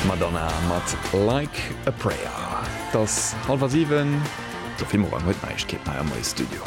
D'Madonna mat Like a Prayer. Et ass hallef a siwen. D'Sophie Morang huet d'Neiegkeeten hei am Moie Studio.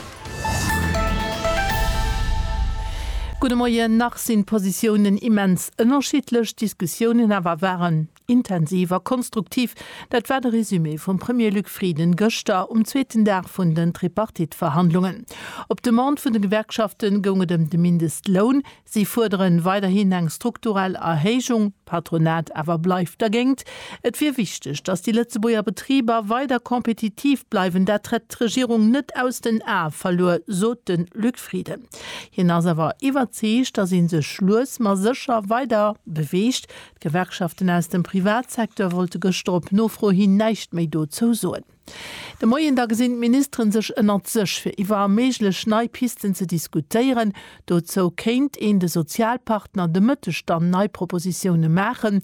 Gudde Moien. Nach sinn d'Positiounen immens ënnerschiddlech, d'Diskussiounen awer waren intensiv a konstruktiv. Dat war de Resumé vum Premier Luc Frieden gëschter um zweeten Dag vun den Tripartite-Verhandlungen. Op Demande vun de Gewerkschafte goung et ëm de Mindestloun, Si fuerderen weiderhin eng strukturell Erhéijung, d'Patronat awer bleift dergéint. Et wier wichteg, datt déi Lëtzebuerger Betriber weider kompetitiv bleiwen, dat hätt d'Regierung net aus den Ae verluer, sot de Luc Frieden. Hien ass awer iwwerzeegt, datt ee sech lues ma sécher weider beweegt. D'Gewerkschaften aus dem Privatsecteur wollte gëschter op Nofro hin näischt méi dozou soen. De Moien da gesinn d'Ministeren sech ënnert sech, fir iwwer méiglech nei Pisten ze diskutéieren. Dozou kéint een de Sozialpartner de Mëtteg dann nei Propositioune maachen.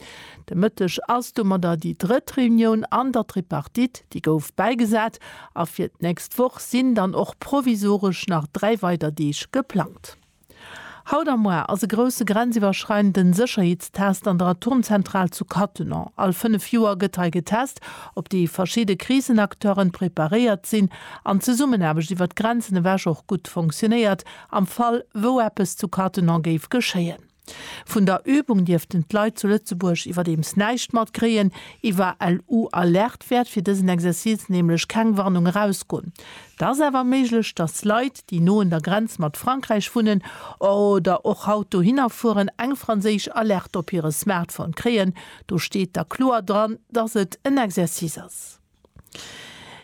De Mëtteg ass domadder déi drëtt Reunioun an der Tripartite, déi gouf bäigesat. A fir d'nächst Woch sinn dann och provisoresch nach dräi weider Deeg geplangt. Haut a moar ass e grousse grenziwwerschreidenden Sécherheetstest an der Atomzentral zu Cattenom. All fënnef Joer gëtt hei getest, ob déi verschidde Krisenacteuren preparéiert sinn an d'Zesummenaarbecht iwwer d'Grenzen ewech och gutt fonctionéiert am Fall, wou eppes zu Cattenom géif geschéien. Vun der Übung dierften d'Leit zu Lëtzebuerg iwwerdeems näischt matkréien. Iwwer LU-Alerte wäert fir dësen Exercice nämlech keng Warnung erausgoen. Et ass awer méiglech, dass Leit, déi no un der Grenz mat Frankräich wunnen oder och haut dohinner fueren, eng franséisch Alerte op hire Smartphone kréien, do steet da kloer dran, dass et en Exercice ass.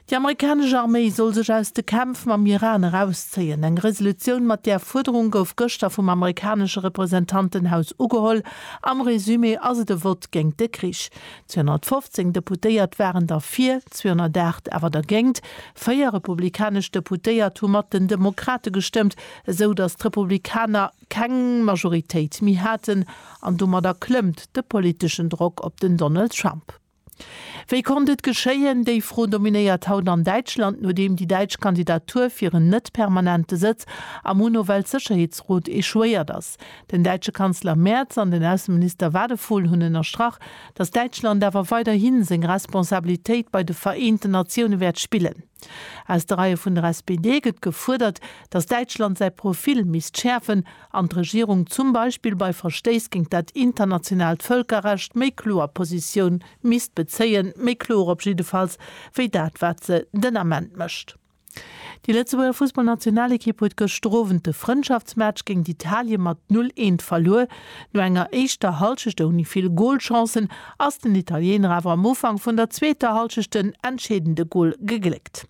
Déi amerikanesch Arméi soll sech aus de Kämpf mam Iran erauszéien. Eng Resolutioun mat där Fuerderung gouf gëschter vum amerikanesche Representantenhaus ugeholl. Am Resumé ass et e Vott géint de Krich. 215 Deputéiert waren derfir, 208 awer dergéint. Véier republikanesch Deputéiert hu mat den Demokrate gestëmmt, esou datt d'Republikaner keng Majoritéit méi haten, an domadder klëmmt de politeschen Drock op den Donald Trump. Wéi konnt et geschéien? Déi Fro dominéiert haut an Däitschland, nodeem déi däitsch Kandidatur fir en net-permanente Sëtz am UNO-Weltsécherheetsrot echouéiert ass. Den däitsche Kanzler Merz an den Ausseminister Wadephul hunn ënnerstrach, datt Däitschland awer weiderhi seng Responsabilitéit bei de Vereenten Natioune wäert spillen. Aus de Reie vun der SPD gëtt gefuerdert, datt Däitschland säi Profil misst schäerfen an d'Regierung zum Beispill bei Verstéiss géint dat internationaalt Vëlkerrecht méi kloer Positioun misst bezéien, méi kloer op jiddefalls, wéi dat wat se den Ament mécht. Déi Lëtzebuerger Fussballnationalekipp huet gëschter Owend de Frëndschaftsmatch géint Italien mat 0, 1 verluer. No enger éischter Hallschecht ouni vill Golchancen ass den Italiener awer am Ufank vun der zweeter Hallschecht den entscheedende Gol gegléckt.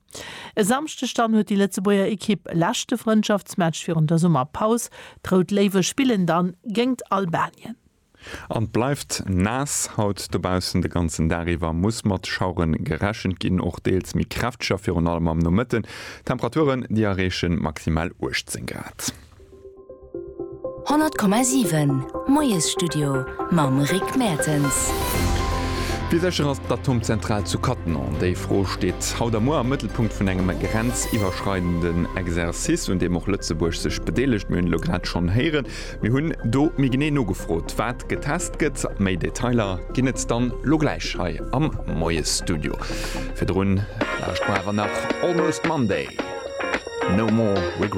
E Samschdeg dann huet déi Lëtzebuerger Ekipp e leschte Frëndschaftsmatch virun der Summerpaus. D'Rout Léiwe spillen dann géingt Albanien. An 't bleift naass haut dobaussen. De ganzen Dag iwwer muss mat Schauere gerechent ginn, och deels méi kräfteger, virun allem am Nomëtten. Temperaturen déi erreechen maximal 18 Grad. 100,7 Moiesstudio mam Rick Mertens. Wéi sécher ass d'Atomzentral zu Cattenom? Déi Fro steet haut a muer am Mëttelpunkt vun engem grenziwwerschreidenden Exercice, un deem och Lëtzebuerg sech bedeelegt. Mir hunn elo grad schonn héieren, Mir hunn do méi genee nogefrot, wat getest gëtt. Méi Detailer ginn et dann elo gläich hei am Moiesstudio. Virdrun lauscht mer awer nach Almost Monday, No More Regrets.